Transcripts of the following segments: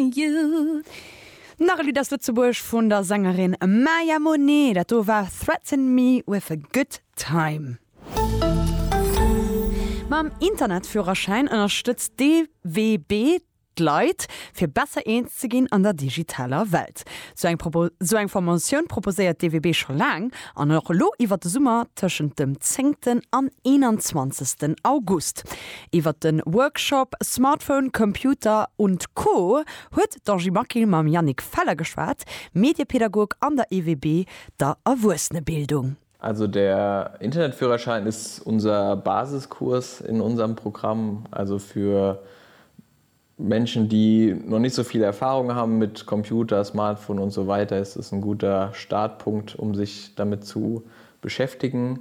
Nach e Lidd aus Lëtzebuerg vun der Sängerin Maya Monet. Dat do war Threaten Me With A Good Time. Mam Internetführerschäin ënnerstëtzt d'EWB d'Leit, fir besser eens ze ginn an der digitaler Welt. Sou eng Formatioun proposéiert d'EWB scho laang an och elo iwwert de Summer tëschent dem zéngten an eenanzwanzegsten August. Iwwert de Workshop Smartphone, Computer und Co. Huet d'Angie Maquil mam Yannick Feller geschwat, Mediepädagog an der EWB, der Erwuessenebildung. Also der Internetführerschein ist unser Basiskurs in unserem Programm, also für Menschen, die noch nicht so viel Erfahrung haben mit Computer, Smartphone und so weiter, ist es ein guter Startpunkt, um sich damit zu beschäftigen.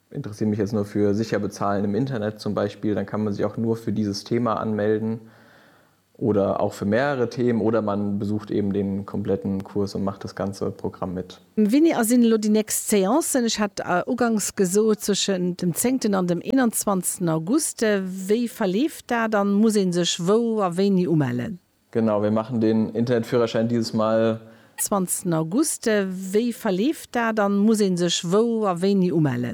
Interessiere mich jetzt nur für sicher bezahlen im Internet zum Beispiel, dann kann man sich auch nur für dieses Thema anmelden oder auch für mehrere Themen oder man besucht eben den kompletten Kurs und macht das ganze Programm mit. Wéini a sinn elo déi nächst Séancen? Ech hat uganks gesot zwëschen dem zéngten an dem eenanzwanzegsten August. Wéi verleeft dat an muss een sech wou a wéini umellen? Genau, wir machen den Internetführerschein dieses Mal. Zwanzegsten August. Wéi verleeft dat an muss een sech wou a wéini umellen?